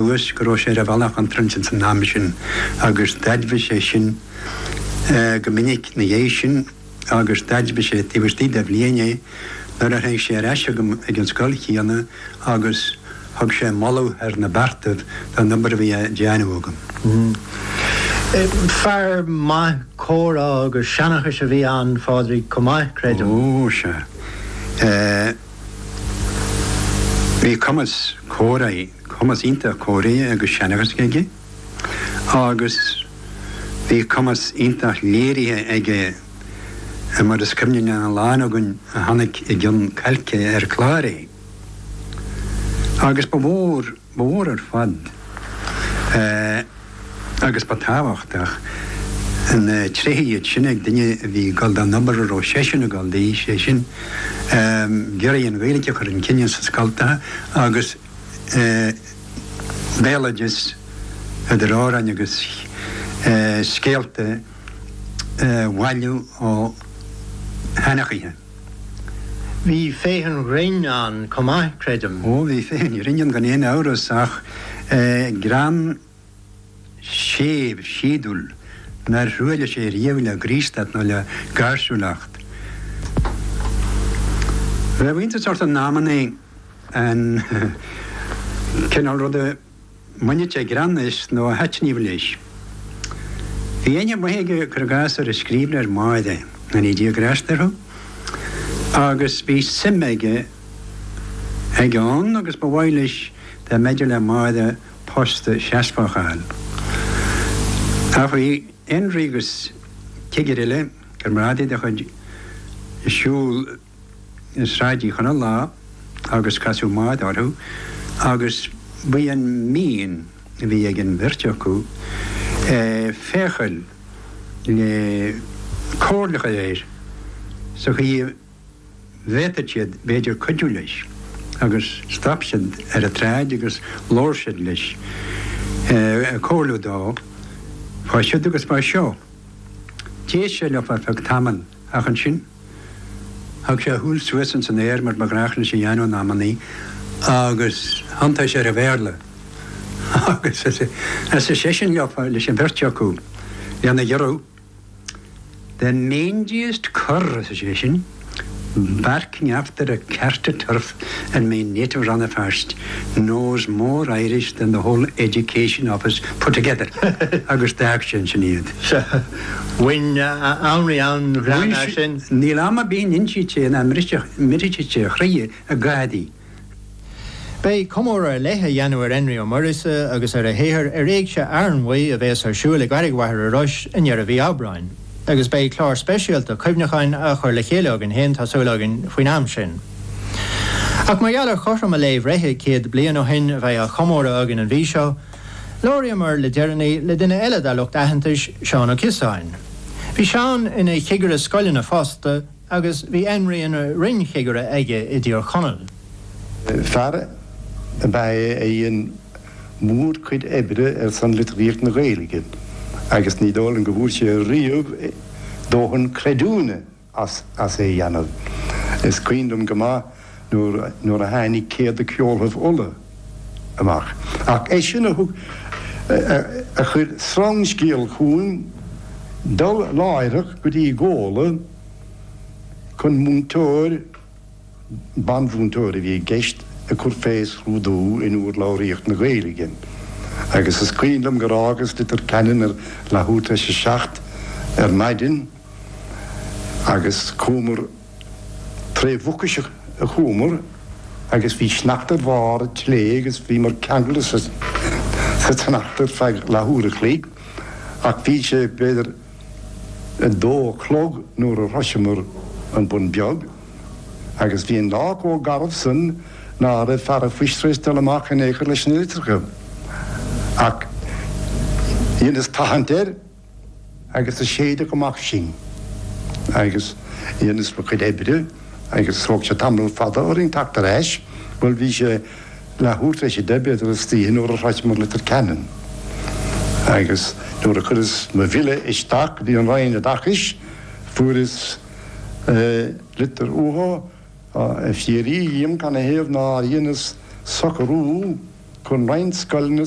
thuas, go raibh sé ar an bhealach chontráilte san am sin agus d'aidmhigh sé sin go minic 'na dhéidh sin agus d'aidmhigh sé taobh istigh de bhliain é nuair a tháinig sé ar ais chugam ag an scoil chéanna agus thug sé moladh thar na beartaibh don obair a bhí á déanamh agam. Fear maith comhrá agus seanachais a bhí ann, a Phádraig, chomh maith, creidim? Ó, sea. Bhí cumas comhráidh. cumas iontach comhráidh agus seanchais aige agus bhí cumas iontach léirithe aige mar is cuimhne le a lán againn a chonaic i gcionn cailce ar chlár é. Agus ba mhór, ba mhór ar fad agus ba tábhachtach na tréithe iad sin ag duine a bhí ag dul don obair a raibh seisean ag dul di, sé sin ag iarraidh an Ghaeilge a chur chun cinn sna scoltacha agus. béaloideas, idir amhráin agus scéalta, a bhailiú ó sheanchaithe. Bhí féith an ghrinn ann chomh maith, creidim. Ó, bhí féith an ghrinn ann gan aon amhras, ach greann. séimh, síodúil, nár thruailligh sé riamh le graostacht nó le gáirsiúlacht. Bheadh iontas ort in amannaí an cineál ruda a mbainfeadh sé greann as nó a thaitníodh leis. Bhí aithne mhaith aige, cuir i gcás, ar an scríbhneoir Máire, go ndéana Dia grásta orthu, agus bhí suim aige ann agus ba mhaith leis dá mb'fhéidir le Máire post seasmhach a fháil. Bhí Énrí agus cigire eile comrádaí dá chuid ag siúl Sráid Uí Chonaill lá agus casadh Máire orthu agus ba í an mhian a bhí ag an bheirt acu féachail le comhairle a chur air sa chaoi a bhféadfadh siad b'fhéidir cuidiú leis agus stop siad ar an tsráid agus labhair siad leis, ag comhairliú dó fá siud agus fá seo. D'éist sé leo ar feadh tamaill ach ansin thug sé a shúil suas ins an aer mar ba ghnách leis a dhéanamh in amannaí agus thiontaigh sé ar an Bhéarla agus arsa seisean leo, leis an bheirt acu, lena ghiorrú. The mangiest cur, arsa seisean, barking after a cart of turf in my native Rannafast, knows more Irish than the whole Education Office put together. Agus d'fhág sé ansin iad. Sea. Bhain Énrí an-ghreann as sin. Níl am ar bith a n-insíodh sé é nach mbriseadh, mbriseadh sé a chroidhe ag gáirí. Beidh comóradh ar leith á dhéanamh ar Énrí Ó Muiríosa agus ar a shaothar ar Éigse Fhearnmhaí a bhéas ar siúil i gCarraig Mhachaire Rois i ndeireadh mhí Aibreáin, agus beidh clár speisialta cuimhneacháin á chur le chéile againn fhéin, tá súil againn, faoin am sin. Ach mar gheall ar chothrom a lae bhreithe, céad bliain ó shoin a bheidh á chomóradh againn an mhí seo, labhraíomar le deireannaí le duine eile dár lucht aitheantais, Seán Ó Cíosáin. Bhí Seán ina chigire scoileanna fosta, Agus bhí Énrí ina roinn-chigire aige i dTír Chonaill. Fear ab ea é a dhein mórchuid oibre ar son litríocht na Gaeilge agus ní dóigh liom go bhfuair sé riamh dóthain creidiúna as é a dhéanamh. Is cuimhin liom go maith, nuair a tháinig Céad de Cheoltaibh Uladh amach. Ach eisean a thug, a chuir sreangscéal chughainn dul láithreach go dtí Gola chun múinteoir, ban-mhúinteoir a bhí i gceist, a chur fé scrúdú in úrlabhraíocht na Gaeilge. Agus is cuimhin liom gur fhágas Leitir Ceanainn ar leathuair tar éis a seacht ar maidin agus chuamar, Tré Mhucais a chuamar agus bhí sneachta ar bharr an tslé' agus bhíomar ceangailte sa tsneachta ar feadh leathuair a chloig ach bhí sé b'fhéidir a dó a chlog nuair a shroiseamar An Bun Beag agus bhí an lá chomh garbh san ná raibh fear an phoist tar éis dul amach in aon chor leis na litreacha ach dheineas tathant air agus a séideadh amach sinn agus dheineas mo chuid oibre agus thóg sé tamall fada orainn teacht ar ais, bhuel bhí sé leathuair tar éis a deich b'fhéidir istoíche nuair a shroicheamar Leitir Ceanainn agus nuair a chuireas mo bhille isteach go dtí an Roinn Oideachais fuaireas litir uathu ag fiafraí dhíom canathaobh nár dheineas socrú chun roinnt scoileanna